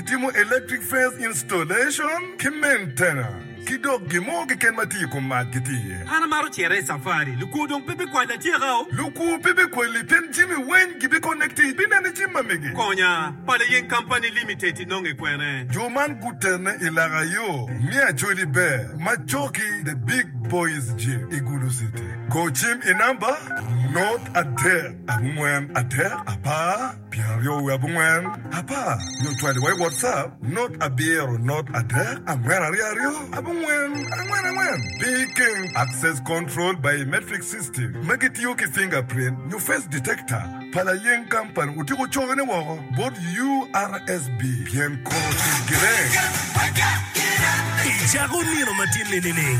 timo electric fence installation ki maintenance ki dok gin mo keken ma tye i kom mac gitye iye. An amaro cito i safari. Lukwo dong pe bikwali atyeka o. Lukwo pe bikwali pien jami weng gibikonek tic. Bineno i jami ma mege. Konya, Pala Yeng Company Limited inonge kwene? Jo man gutene i laka yo me Acholi Ber ma coki The Big Boys Gym i Gulu City. Go cim i namba nort adek angwen adek apar. Pyeraryo wiye abongwen, apar, nyo cwadi wa i WhatsApp, not abiro, not adek, angwen aryo aryo, abongwen, angwen angwen. Pi keng Access Control Biometric System ma gitiyo ki fingerprint nyo face detector pa layeng company otiko coge ne woko bot URSB pien kuro tic gine. I cako nino ma tye ninining?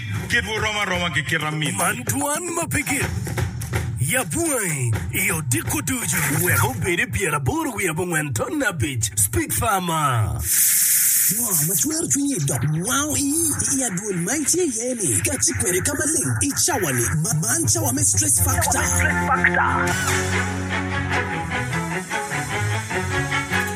Kitwu rom aroma ki kit amitwu. Man twan ma pe gin. Yab wangi i odiko ducu. Wek obed i pyer aboro wiye abongwen ton abic. Speak farmer. Ngo ma cwero cwinyi dok wango iyi i adwol ma itye iye ni ka ci kwede ka maleng i cawa ni? Man cawa me stress factor.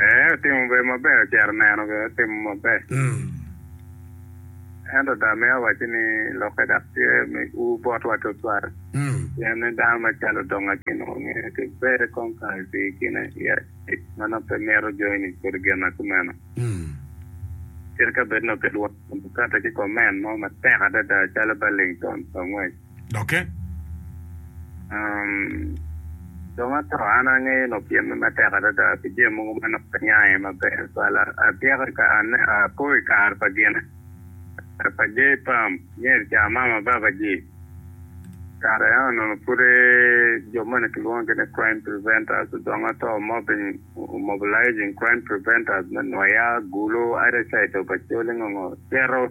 Ee, otimo be maber, ocito oneno be otimo maber. Ento dong amito wacci ni lokke dok tye me ur botwa tutwal, pien ni dano macalo dong akin onongo ngeye ki bere kong kare i pii kine i acel ma nongo pe mito joni ni kodi gin ma kumeno. Kadi ka bed nongo kilwongo Democratic ki koment mo matek adada calo Burlington pa ngwec, dokke. Dong ato, an angeyo lok tyen me matek adada pi jami mogo ma nongo aniang iye maber. Twal atyeko i kare, apo i kare pa gine, kare pa Jay Pam, myero ca mama baba ji. Kare eno onongo pud jo moni kilwongo gin ni crime preventers, dong ato mobbing, mobilizing crime preventers me Nwoya, Gulu, either side of Acholi ngo ngo, cito.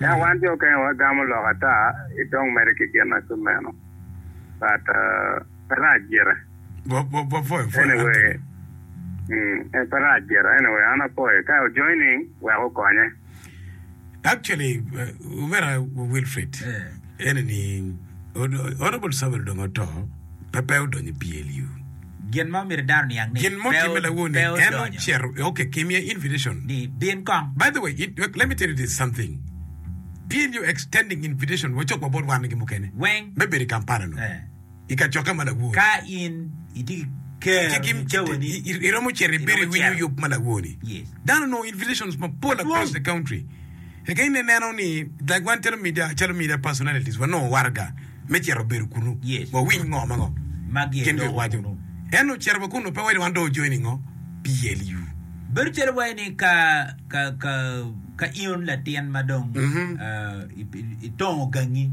Ento wan jo okenge wagamo lok ata ci dong medde ki gin ma tum meno. But pe rac gire. Anyway, mm, pe rac gire. Anyway, an apoye. Ka o joining, wek okonye. Actually, Omera Wilfrid, Eni ni, Honourable Samuel dong oto, pe pe odonyo i PLU. Gin mo myero dano niang ni, Gin mo pe timme lawoni, pe en odonyo. ocito, ok, kimiye invitation. Ni, bin kong. By the way, it, let me tell you this something, PLU extending invitation wa cok wa bot wan-ni ki mukene Weng. me bedo i Kampala-nu. Eh. i kacokke ma lawo-ni. Ka in itye ki ker ni cawani iromo cito ibedo i winyo yub ma lawo ni, dano onongo invitations mapol across the country. Eka in ineno ni like wan calo media calo media personalities wanongo waraga me cito bedo kunu wawiny ngo ma ngo ma gin dong waco. Ento ocito wa kunu pe waydi wan dong ojoin i ngo? PLU. Bedo calo waci ni ka ka in latin ma dong itongo gangi.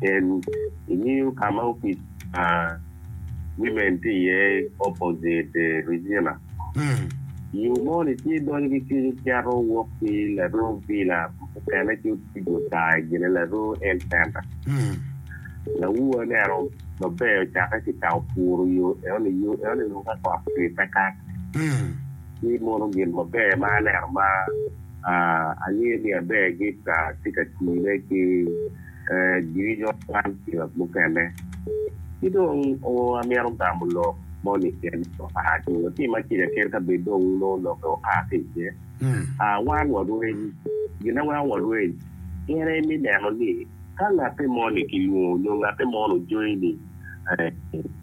Cen, Ingeyo ka ma opic pa Women tye iye opposite Regina? Yo moni tye donyo ki kenyo cito wok ki Laroo Villa ma mukene ci otigo taa i gine Laroo Health Center. Lawu aneno maber ocakke ki ka opuro yo enoni, yo enoni nongo ka kot cwe pe kato. Ci mono gin maber ma aneno ma. Angeyo ni aber ni Esta tye ka tine ki jwinyo man pi ot mukene. Ki dong amito gamo lok moni kene oa ki latim acel kene ka bed dong nongo lokke oa ki iye. Wan warweny, gin ma weko warweny en aye me neno ni ka ngatte moni kilwongo nyo ngatte moni ojoin i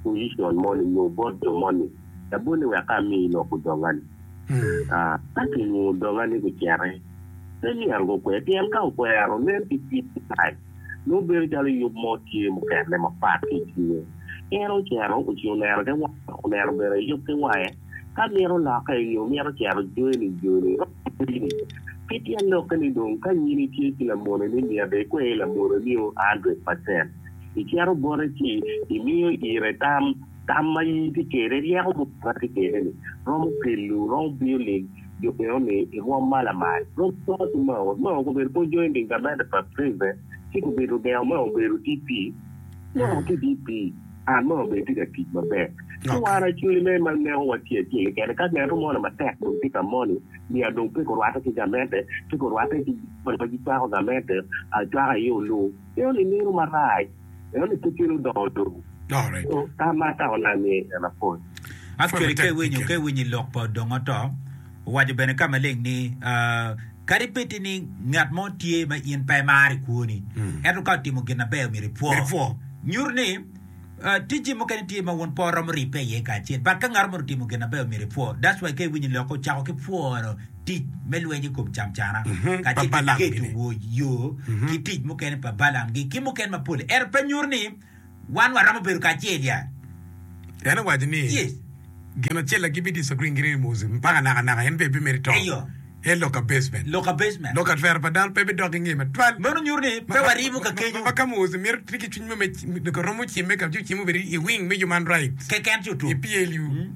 pojicon moni nyo bot jo moni, labonne wek ka amiyi lok odongani. Ka kingungu doga ni gucete, pe myero gukwer, pien ka okwero, nen pi kit ki pac, nongo bedo calo yub mo tye mukene mapat ki i cwinye. En ocito, ociyo lero ki wange, dok oneno bene i yub ki wange. Ka mito lokke, nyo mito cero joni, joni romo kweri. Ki tyen lokke ni dong, ka nyini tye ki lamoneni, myero ikwer lamoneni-o a hundred pacent. Icito bote ci imiyo ire tam Tam ma in itye kwede, ryeko mutoka itye kwede-ni, romo kelo, romo biyo ling jo bino ni i rwom ma lamal. Rwom kore ki Mao. Mao gubedo bot joining government of Australia, ci gubedo ogengo Mao obedo DP. Mao tye DP, and Mao bene tye ka tic maber. Ci wan Australia-ne ma neko watye acel keken-ni, ka ngeno moni matek dong tye ka moni, myero dong pe gurwatte ki gamente, pe gurwatte ki jami ma gicwako gamente acwaka aye oluu. Meno ni meno marac. Eno pe gin odongo lobo. Nyo ka ma ka onam iye i nino mapol. Ath kwede ka iwinyo ka iwinyo i lok pa odong oto, owaco bene ka maleng ni, Kadi bed ni ni ngat mo tye ma in pe imaro i kwoni, ento ka otimo gin maber myero ipwo. Nyuto ni tijji mukene tye ma wun po romo ribbe iye kacel, but ka ngat mo otimo gin maber myero ipwo. That's why ka iwinyo i lok-ki ocako ki pworo tic me lweny i kom camcana kacel ki keto wa i yo ki tic mukene pa Balaam gi ki mukene mapol-li. Ento pe nyuto ni wan waromo bedo kacel ya. En owaco ni, Yes. Gin acel na gibi disagree gini ni Moses mpaka naka naka en pe bimito to. Eyo. En lok ka basement. Lok ka basement. Lok ka twero pa dano pe bidok ki nge matwal. Meno nyuto ni pe warimo ka kenyo. Ma ka Moses mito tye ki cwiny mo me romo cimme ka ci ocimo bene i wing me human rights. Keken ci otum. I PLU.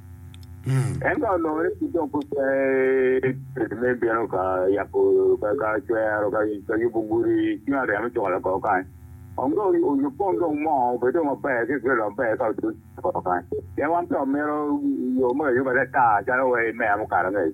En ka olore ki jo gupe me bino ka yako ka cwero ka yubo gudi ci nga ryemo cuko loko kany. Ong do oyub kong dong mo obe dong maber ki kelo maber ka oduc loko kany. Pien wan pe omiro yo me ayuba ata calo wa i meya mukato angec.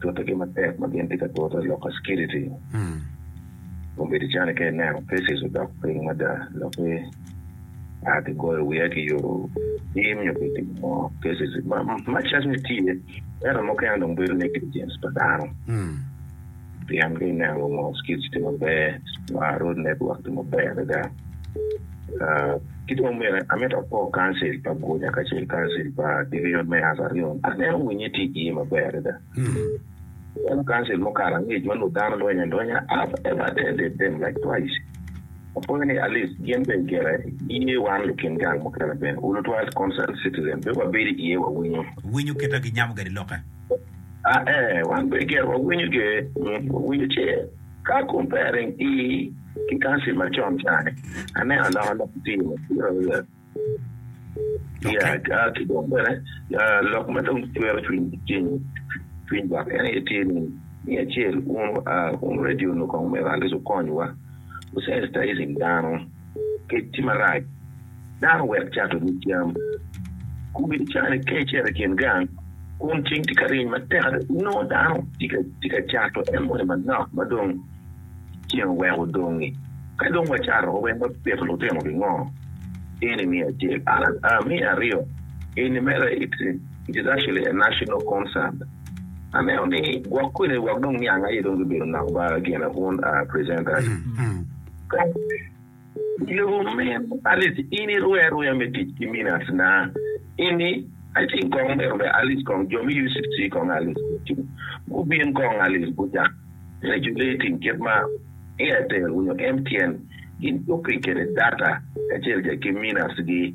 Tutigi matek ma gin tye ka tute lok ka security dong bedo cani ka ineno cases odok piny mada lokke a kigoyo wiya ki yoto tim nyo ki timo ngo cases much as ni tye ento mukene dong bedo negligence pa dano. Pien ka ineno wungo skits tye maber ma road network tye maber adada. Ah, ki dong bene amito apo council pa Gunya kacel council pa division me Asa Rion. Aneno winye tye iye maber adada. Eno council mukato angec ma nut dano lweny alwenya, I've ever attended them like twice. Apwoyo ni at least gin bene gire iye wan lukin gang mukene bene, wu lutwal concerned citizen bene wabedo iye wawinyo. Winyo keta ginyamo gadi lokke. A Ee, wan bene gire wawinyo ge mit wawinyo ce ka kom pe aring i ki kansil ma con cani. Aneno aloka lok i tim atira wiya ya ki dong bene lok ma dong cwero cwiny ki ceng cwiny lwak en aye tye ni me acel un a un radio nukong me rallis wukonywa wu sensitizing dano kec tye marac. dano wek cato nyig cam. Kumi dicane kecere i kin gang, kun ceng tye ka ryeny matek adada, inongo dano tye ka cato emoni manok ma dong ceng oweko odongi. Ka dong wacato wa wek wapit lutino gingo? Eni me acel. Me aryo, eni mere it actually a national concern. Aneno ni gwok kwede wek dong niang aye dong gibedo nok ba gine un presenters. Nyo min Alice in irue aruya me tic ki min atna ini, Aci kong myero be Alice kong jo me UCC kong Alice gucung gubin kong Alice gucak regulating kit ma Airtel nyo MTN gin coping kwede data kacel ki minutes gi.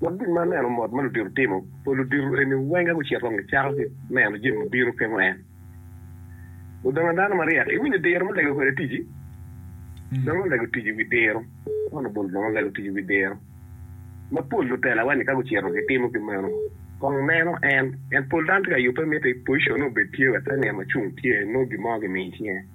Wek gin ma aneno mot ma ludito timo pa ludito eni weng ka gucito kong gicako ki neno jami ma bino pingo en odongo dano maryek. Iwinyo diro ma lego kwede ticci? Dong olego tic i wi diro. Yohana bulu dong olego tic i wi diro ma pol lutela-wa-ni ka gucito gitimo ki meno kong neno en. En pol dano tye ka yubbe mitte i pocicon-ne obed tye wek ka nino ma cung tye nongo gin mo gimiyo i cinge.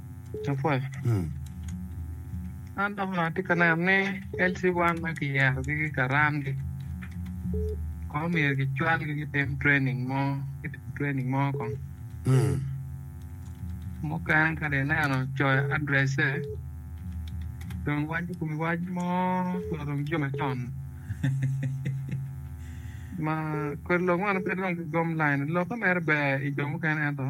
Lapwony, an dok atye ka neno ni LC1 ma kiyerogi ki karamgi kono myero kicwalgi kitim training mo, kitim training mo kong. Mukene kadi ineno coyo address-se dong waco kome wac mo ma dong jo macon ma kodi lok man pe dong gigom lain. Lokke mere ber i jo mukene ento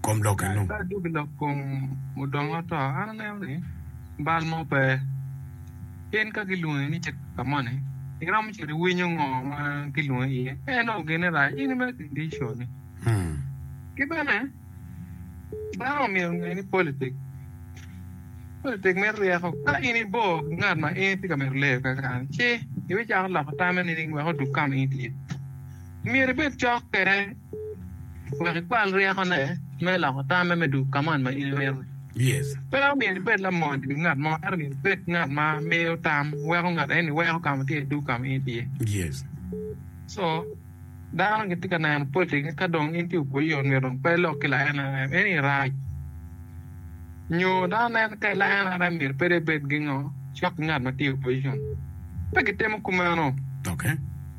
kom lokke-nu. Ka adugo i lok kom mudongo ato, an aneno ni bal mo pe. Pien ka gilwongi ni cito ka moni, iromo cito iwinyo ngo ma gilwongi iye. Ka inongo gene rac, in imed ki diconi. Ki bene, dano myero onge ni politik politik mito ryeko. Ka in ibor ki ngat ma in itye ka mito leyo keken, ci ibicako loko tamme nining wek odug ka ma in itye? Myero ibed cok kwede wek ikwal ryekone me loko tamme me duk ka mot ma in imito-ni. Pe omyero ibed lamony pi ngat mo, ento myero ibed ngat ma miyo tam, weko ngat eni weko ka ma tye iduk ka ma in itye. Co dano gitye ka neno poti ni ka dong in tye obwol i ot myero dong pe ilok ki laenrem. Eni rac. Nyo dano neno ka i laenrem myero pe dong ibed gingo cok ki ngat ma tye i opposition. Pe gitimo kumeno.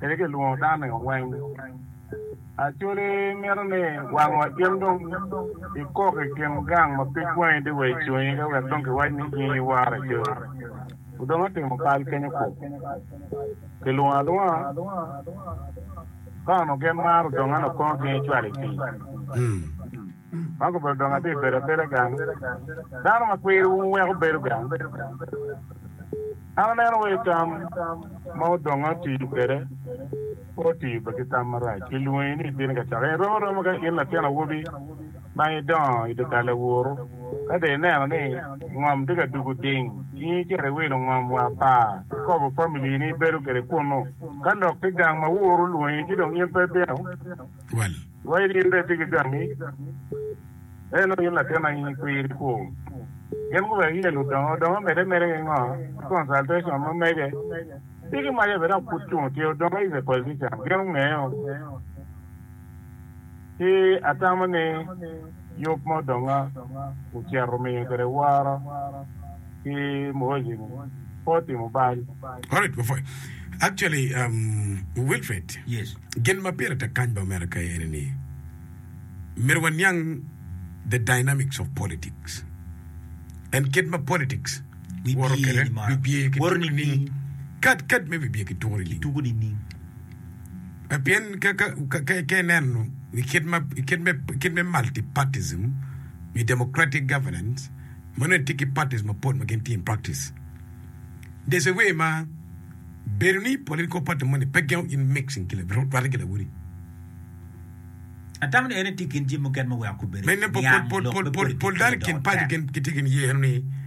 Kadi kilwongo dano i oweng. Actually mito ni wang wa gin dong ikok i kin gang ma pig wangi dong wa i cwingi ka wek dong kiwac ni in i war acoo. Odong atimo kal kenyo kok. Kilwongo alwonga ka onongo gin maro odong an okongo gin icwalo i pii. Man kobedo dong atye bedo abeda gang. Dano ma kwirowu weko bedo gang. An aneno wai tam ma odongo atiyo kwede pe otiyo bed ki tam marac. Kilwongi ni ibino ka cakke. Irom aroma ka in latin awobi ma idongo i dye kal awuru, ka dong ineno ni ngom tye ka dugo ding, in icito iwilo ngom wa pa ikobo famili ni ibedo kwede kunnu. Ka lok tye gang ma wuru olwongi ci dong in pe ibino. Well. Wa iri in bene tigi gangi, ento in latin ainy kwir ikwo. Gin guweko iye ludongo dongo omede mere ki ngo ki consultation ma mege. Tigi maca bene dok pud cung tye odongo is a politician gin ongeyo ki atamo ni. Yub ma odonga ocito omiyo kwede woro ki Muhozi ni pe otimo bal. Alright before you actually um, Wilfred Yes. gin ma pire tek kany bene mere ka eni ni myero waniang the dynamics of politics and kit ma politics Bibye woro kwede nining? bibye ki Woro tuko nining? nining? Kad kad me bibye ki tuko nining? Tuko nining? Pien ka ineno i kit me multipartyism nyo democratic governance, ma nongo etye ki parties mapol ma gin tye in practice, there is a way ma bedo ni political party moni pe gengo in mixing ki rwate ki lawoti. Atamo ni en etye i kin jami mukene ma weko kube niang lok me politics me dok. Pol dano i kin paco gitye ki niye eno ni.